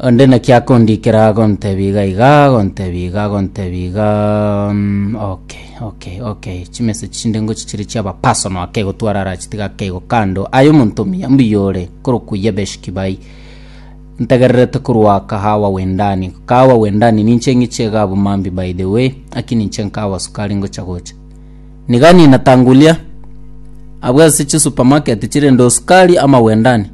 Onde naki akondikera agontebia iga iga, agontebia iga, agontebia iga, mm, okay, okay, okay. Chimessage chinde ngochie chire chiaba personal ake gotwara ara chitiga ake igo kando. Aye omonto omuya mbuya ore, korokwa ye Beshkibai. Ntegererete korwa kahawa wendani. Kahawa wendani ninche ng'ichie iga abwo mambi by the way, aki ninche nkahawa sukari ngocha gocha. Niga ninatangulia, abwo ase chisupermarket chirende o sukari ama wendani.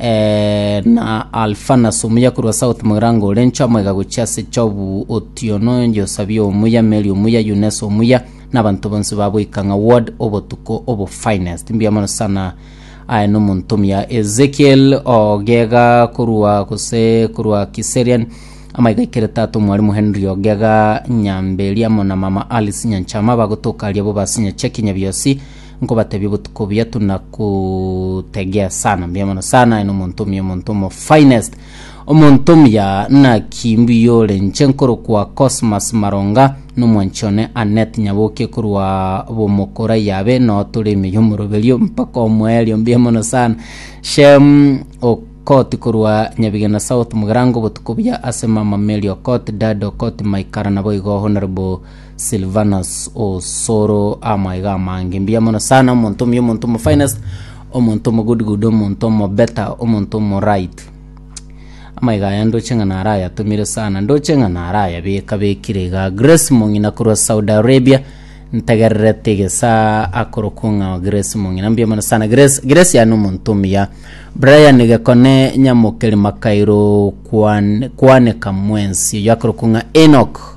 eh, na Alfanas omuya korwa South Morango ore nchamoiga gochia ase Chobu Otiono Josabia omuya Mary omuya Yunes omuya na abanto bonsi ba Boikang'a ward obotuko obo finest mbuya mono sana aye nomonto omuya Ezekiel Ogega korwa gose korwa Kiserian amaiga ikere tata omwarimu Henry Ogega Nyamberi amo na mama Alice Nyanchama bagotoka aria bo basinya cheki nyabiosi nkobatebia obotuko buya tuna kutegea sana mbuya mono sana eno omonto omuya omonto omo finest omonto omuya naki mbuya ore nche nkorokwa cosmas maronga nomwanchi one anet nyaboke korwa bomokora yabe no tore ime yomoroberio mpaka omoerio mbuya mono sana shem okoti korwa nyabigena south mugerango obotuko buya ase mama mary okot dad okot maikara nabo igo honorable Silvanus osoro amaiga amange mbuya mono sana omonto omuya omonto omo finest omonto omo good good omonto omo better omonto omo right amaiga aya ndoche ng'a nara ayatumire sana ndoche ng'a nara ayabeka bekire iga grace mong'ina korwa saudi arabia ntegererete gesa akorokwo ng'a grace mong'ina mbuya mono sana grace grace yani omonto omuya brian gekone nyamokeri makairo kwan kwaneka mwensi oyo akorokwo ng'a enok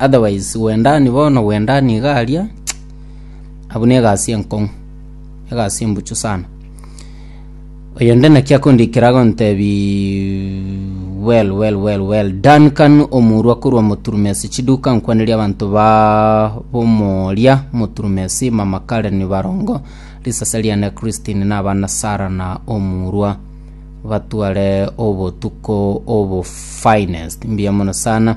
Otherwise gwendani bono gwendani iga aria abwo ne egasi enkong'u egasi embuchu sana oyo nde naki akondikera agontebi well well well well done kanu omurwa korwa moturumesi chiduka nkwaneria abanto ba bomoria moturumesi mama Karen barongo risase riane Christine na abana Sara na omurwa batware obotuko obo finest mbuya mono sana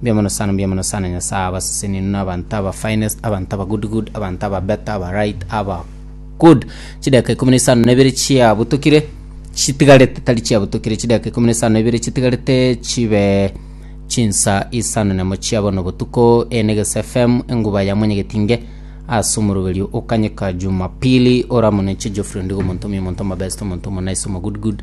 Mbuya mono sana, mbuya mono sana Nyasaye abasesenenu na abanto aba finest, abanto aba good good, abanto aba better, aba right, aba good. Chidakika ikomi na isano na ibere chiabutokire chitigarete tari chiabutokire chidakika ikomi na isano na ibere chitigarete chibe chinsa isano nemo chia bono botuko ene gese FM enguba ya mwenyegetinge ase omoroberio okanyeka Jumapili oramonenche Geoffrey Ondigo omonto omi omonto omabest omonto omonaiso omo good good